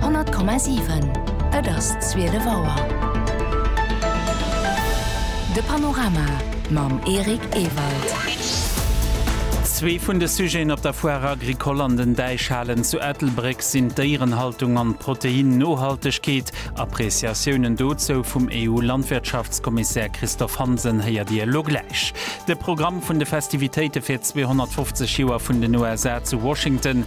100,7 Et ass 12 Auer. De Panorama mam Eric Ewald. Zwee vun de Sujeten op der Foire Agricole an den Däichhalen zu Ettelbréck sinn d'Déierenhaltung an d'Proteinnohaltegkeet. Appreciatiounen dozou vum EU-Landwirtschaftskommissär Christophe Hansen héiert Dir elo gläich. De Programm vun de Festivitéite fir 250 Joer vun den USA zu Washington.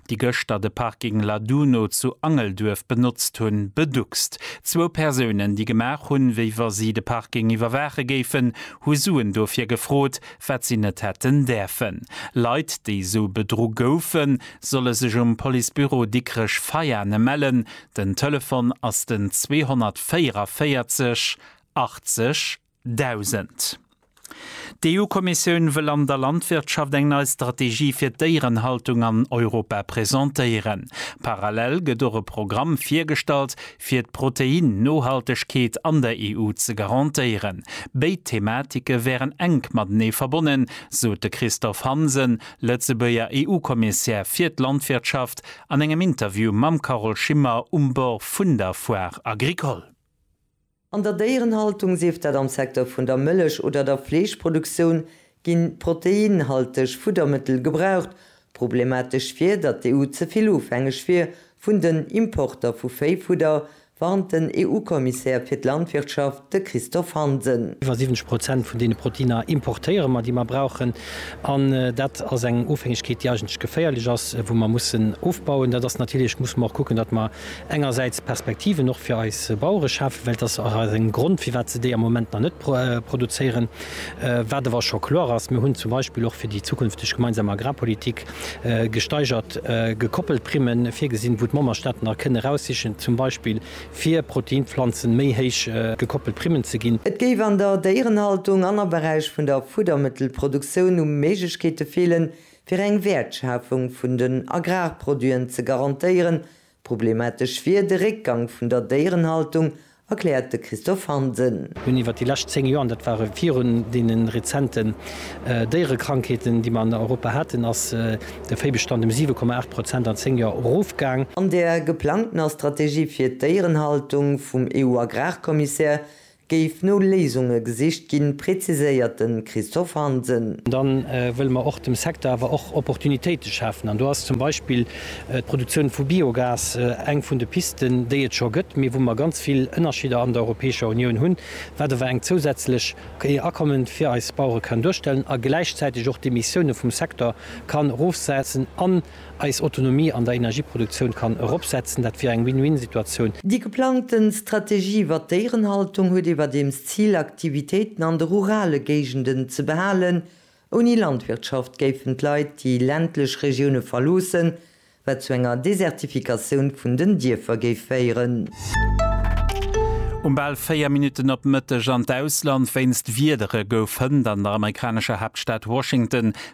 déi gëschter de Parking Laduno zu Angelduerf benotzt hunn, beduckst. Zwou Persounen, déi gemaach hunn, wéi wa si de Parking iwwerwaache géifen, hu Suen dofir gefrot, wat si net hätten däerfen. Leit, déi esou bedru goufen, solle sech um Policebüro Dikrech-Veiane mellen. Den Telefon ass den 244 80. 1000. D'EU-Kommissioun wëll an der Landwirtschaft eng nei Strategie fir d'Déierenhaltung an Europa presentéieren. Parallel gëtt och e Programm virgestallt, fir d'Protein-Nohaltegkeet an der EU ze garantéieren. Béid Thematike wären enk matenee verbonnen, sot de Christophe Hansen, Lëtzebuerger EU-Kommissär fir d'Landwirtschaft, an engem Interview mam Carole Schimmer um Bord vun der Foire Agricole. An der Déierenhaltung, sief dat am Secteur vun der Mëllech oder der Fleeschproduktioun, ginn proteinhalteg Fuddermëttel gebraucht. Problematesch wier, datt d'EU ze vill ofhängeg wier vun den Importer vu Véifudder, warnt den EU-Kommissär fir d'Landwirtschaft, de Christophe Hansen. Iwwer 70 Prozent vun deene Proteiner importéiere mer, déi mer brauchen. An dat ass eng Ofhängegkeet, déi eigentlech geféierlech ass, wou mer mussen ofbauen. Dat ass natierlech, musse mer och kucken, datt mer engersäits Perspektiven och fir eis Bauere schafen, well et ass och aus engem Grond, firwat se déi am Moment nach net produzéieren. Wat awer scho kloer ass, Mir hunn zum Beispill och fir déi zukünfteg gemeinsam Agrarpolitik gesteigert gekoppelt Primmen virgesinn, wou d'Memberstaaten da kënnen eraussichen, zum Beispill fir Proteinpflanzen méi héich gekoppelt Primmen ze ginn. Et géif an der Déierenhaltung an am Beräich vun der Fuddermëttelproduktioun u Méiglechkeete feelen, fir eng Wäertschafung vun den Agrarproduiten ze garantéieren. Problematesch wier de Réckgang vun der Déierenhaltung, erkläert de Christophe Hansen. Hunn iwwer déi lescht 10 Joer, an dat war virun deene rezenten Déierekrankheeten, déi mer an Europa haten, ass de Véibestand ëm 7,8 Prozent an 10 Joer erofgaang. An der geplangtener Strategie fir d'Déierenhaltung vum EU-Agrarkommissär Géif no Léisunge gesicht ginn, präziséiert de Christophe Hansen. Da wëlle mer och dem Secteur awer och Opportunitéite schafen. An do ass zum Beispill d'Produktioun vu Biogas eng vun de Pisten, déi et scho gëtt, mee wou mer ganz vill Ënnerscheeder an der Europäescher Unioun hunn, wat awer eng zousätzlech Akomme fir eis Bauere kann duerstellen a gläichzäiteg och d'Emissioune vum Secteur kann erofsetzen an, eis Autonomie an der Energieproduktioun kann eropsetzen. Dat wier eng Win-Win-Situatioun. Déi geplangte Strategie iwwer d'Déierenhaltung huet iwwerdeems d'Zil, Aktivitéiten an de rurale Géigenden ze behalen. Ouni Landwirtschaft géifen d'Leit déi ländlech Regioune verloossen, wat zu enger Desertifikatioun vun den Dierfer géif féieren. Um bal 4 Minutten op Mëtteg an d'Ausland, Wéinst Wiedere gouf hënt an der amerikanescher Haaptstad Washington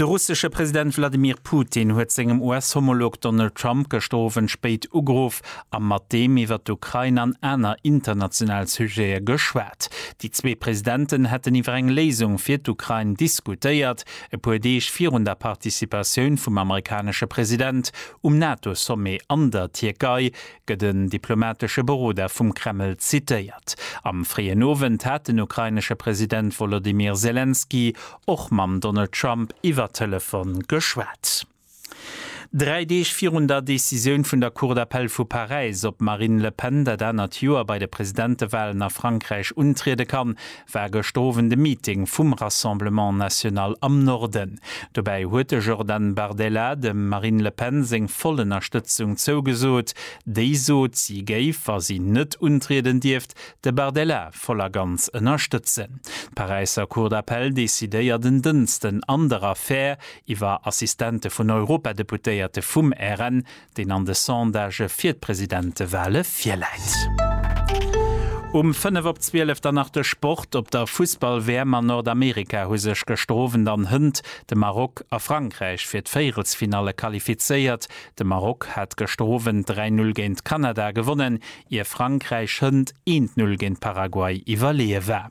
De russesche President Wladimir Putin huet sengem US-Homolog Donald Trump gëschter Owend spéit ugeruff a mat deem iwwer d'Ukrain an aner international Sujete geschwat. Déi zwee Presidenten hätten iwwer eng Léisung fir d'Ukrain diskutéiert, e puer Deeg virun der Participatioun vum amerikanesche President um NATO-Sommet an der Tierkei, gëtt en diplomatesche Beroder vum Kreml zitéiert. Am fréien Owend hat den ukrainesche President Wolodymyr Selenskyj och mam Donald Trump iwwer Telefon geschwat. Dräi Deeg virun der Decisioun vun der Cour d'appel vu Paräis, ob d'Marine Le Pen dat anert Joer bei de Presidentewalen a Frankräich untriede kann, war gëscht Owend e Meeting vum Rassemblement National am Norden. Dobäi huet de Jordan Bardella dem Marine Le Pen seng voll Ënnerstëtzung zougesot, déi sot, si géif, wa si net untrieden, dierft De Bardella voll a ganz ënnerstëtzen. D'Paräisser Cour d'appel decidéiert en Dënsten an der Affär iwwer Assistente vun Europadeputéierte vum RN, deen an de Sondagë fir d'Presidentewale virläit. Um fënnef op zwielef dann nach de Sport. Op der Fussball-WM an Nordamerika hu sech gëschter Owend an Hënt, de Maroc a Frankräich, fir d'Véierelsfinalle qualifizéiert. De Maroc hat gëschter Owend 3, 0 géint Kanada gewonnen, ier Frankräich hënt 1, 0 géint Paraguay iwwerleeë war.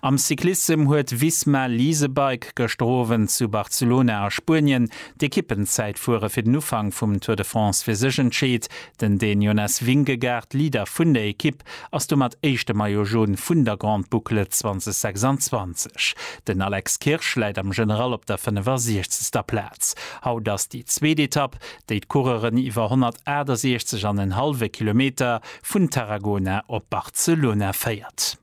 Am Cyclissem huet Visma Leasebike gëschter Owend zu Barcelona a Spuenien d'Ekippenzäitfuere fir den Ufank vum Tour de France fir sech entscheet. Den Dän Jonas Vingegaard, Leader vun der Ekipp, ass domat éischte Maillot Jaune vun der Grande Boucle 2026. Den Alex Kirsch läit am General op der 65. Plaz. Haut ass déi zweet Etapp. déi d'Coureuren iwwer 168 an en hallwe Kilometer vun Tarragona op Barcelona féiert.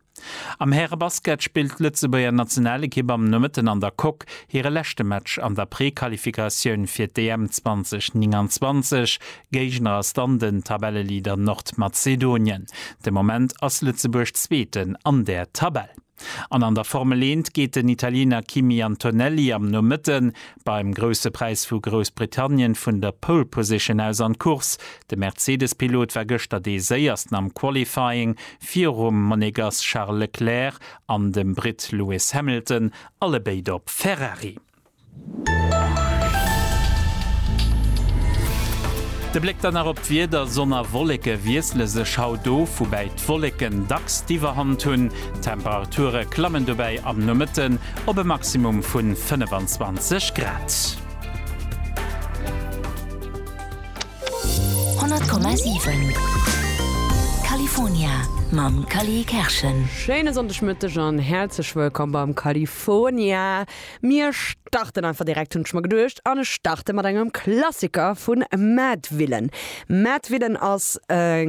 Am Härebasket spillt d'Lëtzebuerger Nationalekipp am Nomëtten an der Coque hire leschte Match an der Prequalifikatioun fir d'EM 2029. Géigner ass dann den Tabelleleader Nordmazedonien. De Moment ass Lëtzebuerg Zweeten an der Tabell. An an der Formel Eent geet den Italiener Kimi Antonelli am Nomëtte beim Grousse Präis vu Groussbritannien vun der Pole Position aus an d'Course. De Mercedes-Pilot war gëschter dee Séiersten am Qualifying, virum Monegass Charles Leclerc an dem Britt Lewis Hamilton, allebéid op Ferrari. De Bléck dann nach op d'Wieder, Sonn a Wolleke wiessle sech haut of, woubäi d'Wolleken dacks d'Iwwerhand hunn. D'Temperature klammen dobäi am Nomëtten op e Maximum vu 25 Grad. Mir starten einfach direkt, hunn ech mer geduecht, an ech starte mat engem Klassiker vun Madvillain. Madvillain ass e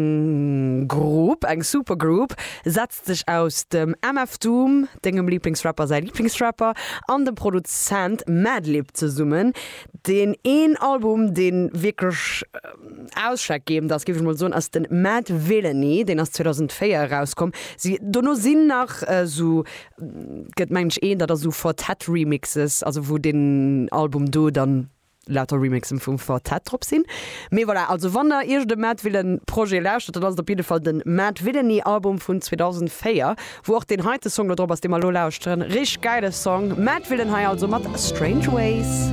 Grupp, eng Supergroup, setzt sech aus dem MF Doom, dengem Liiblingsrapper säi Liiblingsrapper, an dem Produzent Madlib zesummen, deen een Album, dee wierklech ausschlaggebend ass, géif ech mol soen, ass de Madvillainy, deen ass 2004 erauskomm. Si, dono sinn nach esou Gëtt mensch een dat ass u Four Tet Remixes, also wou den Album do dann lauter Remixen vum Four Tet drop sinn. Mee voilà, also wann der iergend e Mad Villain Projet lauschtert, dann ass et op jidde Fall den Mad Villainy Album vun 2004, wou och deen heite Song do drop ass, dee mer elo lauschteren. Richteg gäile Song, Mad Villain hei also mat Strange Ways.